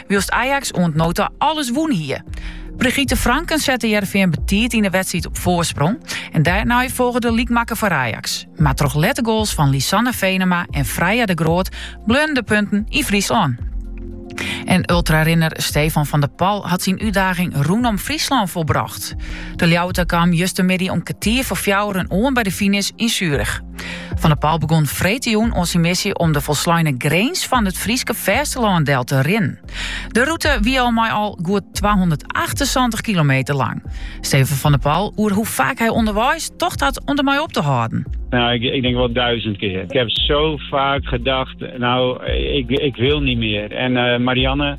wylst Ajax oant no ta alles wûn hie. Brigitte Franken sette Heerenveen betiid yn de wedstriid op foarsprong. En dêrnei folge de lykmakker foar Ajax. Mar troch lette goals fan Lisanne Venema en Freya de Groot bleaune de punten yn Fryslân. En ultrarinner Stefan van der Pal hat syn útdaging rûnom Fryslân volbrocht. De Ljouwerter kaam justermiddei om kertier foar fjouweren oan by de finish yn Zurich. Van der Pal begon freedtejûn oan syn missie om de folsleine grins fan it Fryske fêstelân del te rinnen. De rûte wie al mei al goed 278 kilometer lang. Stefan van der Pal oer hoe faak hy ûnderweis tocht hat om dermei op te hâlden. Nou, ik, ik, denk wel duizend keer. Ik heb zo vaak gedacht, nou, ik, ik wil niet meer. En eh, Marianne,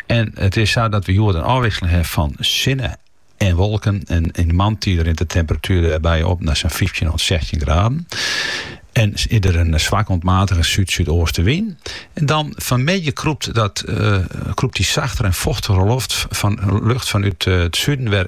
En it is sa dat we hjoed in ôfwisseling hawwe fan sinne en wolken. En yn de moarntiid rint de temperatuer dêrby op nei sa'n fyftjin oant sechstjin graden. En is der in swak oant matige súd-súdeaste wyn. En dan fanmiddei krûpt dat, eh, krûpt dy sachtere en fochtigere loft fan, lucht fanút it suden wer